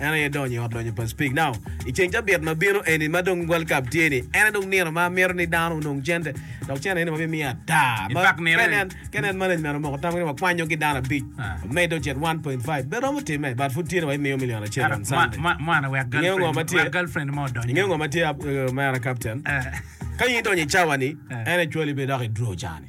En aye donyo i ot lonyo pa Speke. Now, i ceng cabit ma bino eni ma dong World Cup tye ni, en aye dong nino ma amito ni dano onong cente. Dok cente eni wabimiyo ata. In Ma- fact nino ka ni- nen- Ka nen management omoko tamgi ni wakwanyo ki dano abic, Ah. wamed ocit 1.5, be romo timme, but pud tye ni wabimiyo milion acel Ata, on mwa- Sunday. mwa- Mwana wek Ingeyo ngo girlfriend- ma tye? wek girlfriend mo odony. Ingeyo ngo ma tye ab- eh, mera captain? Eh. Ka in idonyo i cawa ni, Eh. en actually bidok i draw ca ni.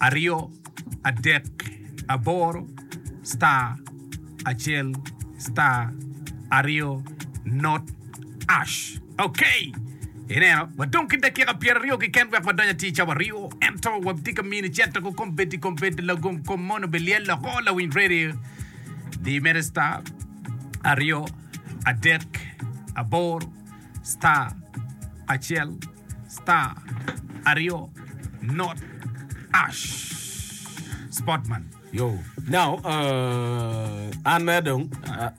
aryo, adek, aboro, star, acel, star, aryo, not, ash. Ok! Ineno, wadong ki dakika pyeraryo keken wek wadony atir ca waryo, ento watye ka mini cito ku kombeddi kombeddi lagom kom moni obilyel woko lawiny radio. Di mere star, aryo, adek, aboro, star, acel, Star aryo not ash sportman yo. Now uh, an mere dong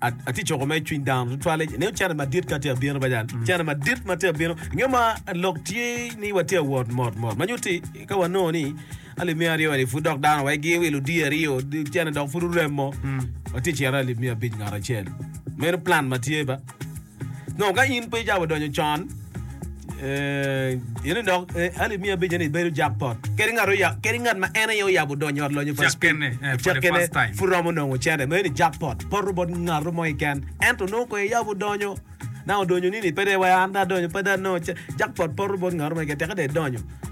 atye coko mere cwiny dano tutwale nio cene madit ka tye abino bajan mm. cene madit ma tye abino nge ma lok tye ni watye awot mot mot ma nyuti ka wanongo ni alimi aryo ni pud dok dano wa gi wilo di aryo cene dok pud uremo mm. watye cere alimi abic ngat acel meno plan ma tye ba Nongo ka in pe icako donyo con, in dok hali miya abica ni bedo jackpot kadi ngat oya kadi ngat ma en aye oyabo donyo i ot lonyo pa Cek kene, eh, for the cek kene first time. pud romo nongo cene mere ni jackpot poto bot ngato mo keken ento nongo kwai iyabo donyo na odonyo nini pe dong iwaco an dong adonyo pe dong anongo ce- jackpot poto bot ngato mo keken teke dong idonyo